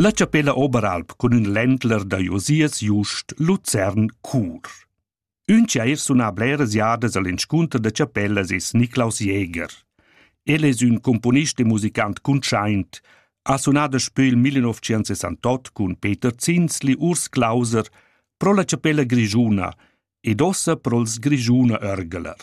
La chapella Oberalp cun ün ländler da Josias Just Luzern cur. Ün chair suna bleras jadas al inscunter da chapellas es Niklaus Jäger. El es ün componist e musicant cuntschaint, ha sunà daspö il 1968 cun Peter Zinsli Urs Clauser pro la chapella grischuna ed ossa pro'ls Grischuna Örgeler.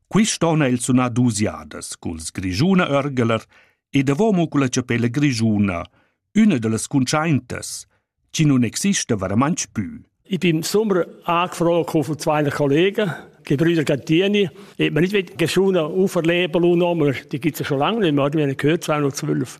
Quist on ha el sunà duos jadas culs Grischuna Örgeler e davomo culla chapella grischuna, üna da las cuntschaintas, chi nun exista varamantsch pü. Ich bin sommer angefroren von zwei Kollegen, die Brüder Gantini. Ich habe nicht mit Geschunen auferleben lassen, aber die gibt es ja schon lange nicht mehr, die haben gehört 212.